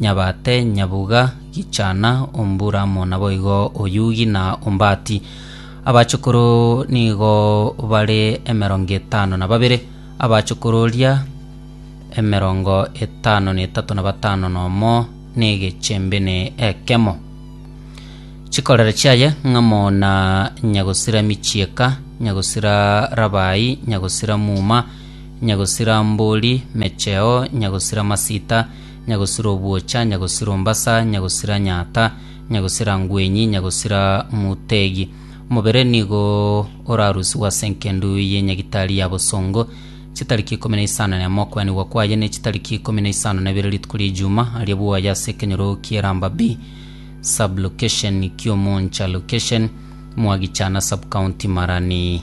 Nyabate, nyabuga, gichana, omburamo, naboigo oyugi na ombati. Abachukuru nigo bare emerongo etano na babere, abachukuru oria emerongo etano na etato na batano nomo negechembe ne ekemo. Chikorera chiaye ng'amo na nyagosira michieka, nyagosira rabai, nyagosira muma, nyagosira mbori, mecheo, nyagosira masita, nyagosira obwocha, nyagosira ombasa, nyagosira nyata, nyagosira ngwenyi, nyagosira mutegi. Omobere nigo orarusigwe ase enkendu y'enyagitari ya bosongo, chitariki ikomi na isano na emo okwenigwa kwaye, ne chitariki ikomi na isano na ibere rituko ri'Ejuuma, aria bwoye ase ekenyoro ki'eramba bi, sub-location, ki'omoncha, location, mwagicha na sub-county, marani.